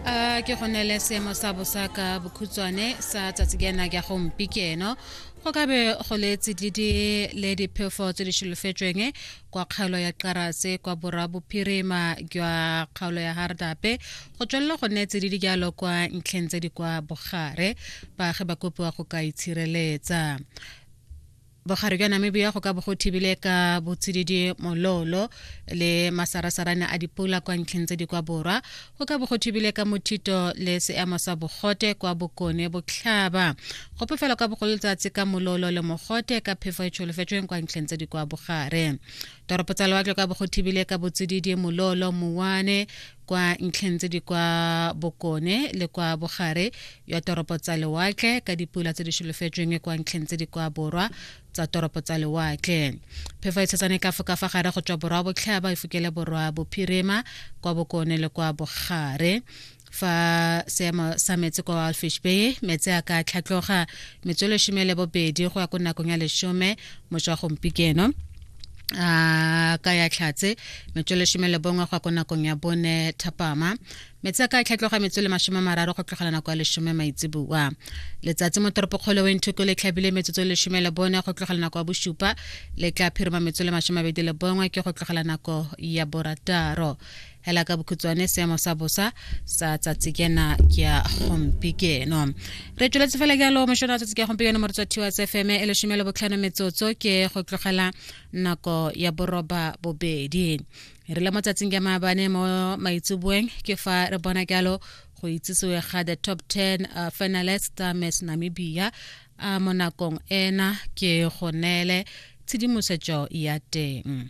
a ke go neele seemo sa bosa ka bokhutshwane sa tsatsi ke ena ke go mpi ke eno go ka be go le tsididi le diphefo tse di solofetsweng kwa kgaolo ya qarase kwa borwa bophirima jwa kgaolo ya hardape go tswelela go nne tsididi jalo kwa ntlheng tse di kwa bogare baagi ba kopiwa go ka itshireletsa bogare bja namibia go ka bo go thibile ka botsididi mololo le masarasarane a dipula kwa ntlheng tse di kwa borwa go ka bo go thibile ka mothito le seemo sa bogote kwa bokone botlhaba go phefela ka bogolo letsatsi ka mololo le mogote ka phefo e tsholofetsweng kwa ntlheng tse di kwa bogare toropo tsa lewatle ka bo go thibile ka botsididi mololo mowane kwa ntlheng tse di kwa bokone le kwa bogare ya toropo tsa lewatle ka dipula tse di solofetsweng kwa ntlheng tse di kwa borwa tsa toropo tsa lewatle phefo e tshetsane ka foka fa gare go tswa borwa botlhaba e fokele borwa bophirima kwa bokone le kwa bogare fa seemo sa metsi kwa alfish bay metsi a ka tlhatloga metsolo shome le bobedi go ya ko nakong ya lesome moswa gompikeno a ka ya tlhatse metso lesome le bongwe go ya ko nakong ya bone thapama metsi a ka tlhatloga metso le masome mararo go tlogela nako ya lesome maitseboa letsatsi mo toropokgolo wenthoko le tlhabile metsotso lesome le bone go tlogela nako ya bosupa le tla phirima metso le masome mabedi le bongwe ke go tlogela nako ya borataro hela ka bokhutshwane seemo sa bosa sa tsatsi kena ke ya gompieno re tsweletse fela jalo mošono wa tsatsi ke ya gompieno mo re tswa thiwa tsfm e lesome le botlhano metsotso ke go tlogela nako ya boroba bobedi re le mo tsatsing ya maabane mo maitseboeng ke fa re bona jalo go itsisiwe ga the top 10 uh, finalist uh, miss namibia uh, mo nakong ena ke go neele tshedimosetso ya teng